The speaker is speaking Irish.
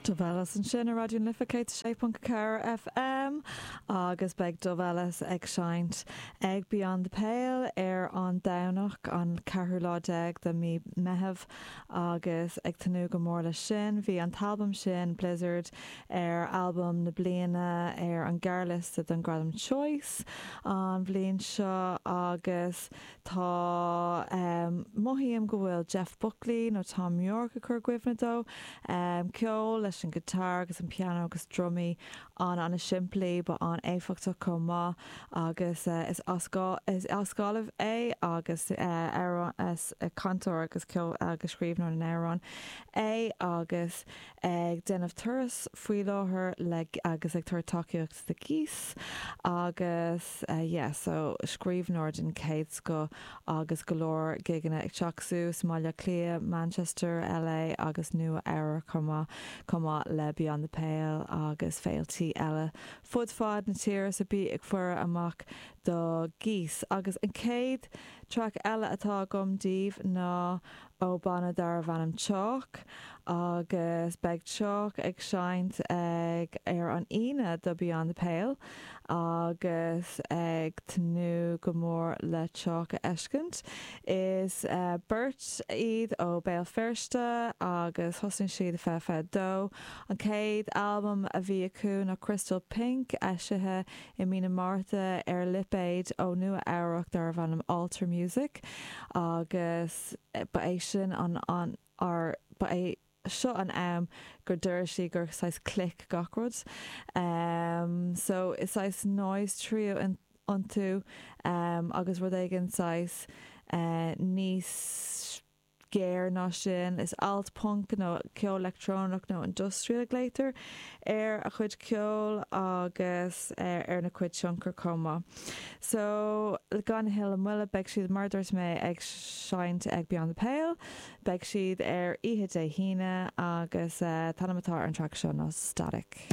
Dove Ellis ansin ar Raidió na Life 106.4 FM agus beidh Dove Ellis ag seinnt ag Beyond the Pale ar an Domhnach an ceathrú lá déag de mí Meitheamh agus ag tnúth go mór leis sin. Bhí an t-albam sin, Blizzard, ar albaim na bliana ar an ghearrliosta don Gradam Choice an bhliain seo agus Tá. Mothaím go bhfuil Jeff Buckley nó Thom Yorke ag cur i gcuimhne dó. Ceol leis an guitar agus an piano agus drumaí an-an-simplí, but an-éifeachtach chomh maith agus is as is as Gaillimh é agus amhrán is cantóir agus ceol agus scríbhneoir na n-amhrán é agus ag déanamh turas faoi láthair le agus ag tabhairt tacaíocht do Geese agus yeah so scríbhneoir den chéad scoth agus go leor gigeanna ag teacht suas, i mBaile Átha Cliath, Manchester, LA agus Nua Eabhrac chomh maith, chomh maith le Beyond the Pale agus féiltí eile fud fad na tíre so bí ag faire amach do Geese agus an chéad traic eile atá agam daoibh ná ó banna darbh ainm Chalk agus beidh Chalk ag seinnt ag ar an Aoine do Beyond the Pale agus ag tnúth go mór le Chalk a fheiscint. Is beirt iad ó Béal Feirste agus thosnaigh siad i fiche fiche dó. An chéad albam a bhí acu ná Crystalpunk eisithe i mí na Márta ar lipéad ó Nua Eabhrac darbh ainm Alter Music agus ba é sin an an or ba é seo an am gur d'airigh sí gur saghas click gach rud ehm so is saghas noise trio iontu ehm agus rud éigin saghas eh níos géar ná sin. Is alt punk nó ceol leictreonach nó industrial a glaotar ar a chuid ceoil agus ar na cuid tionchar chomh maith. So gan a thuilleadh moille beidh siad mar dúirt mé ag seinnt ag Beyond the Pale. Beidh siad ar oíche Dé hAoine agus t-ainm atá ar an track seo ná Static.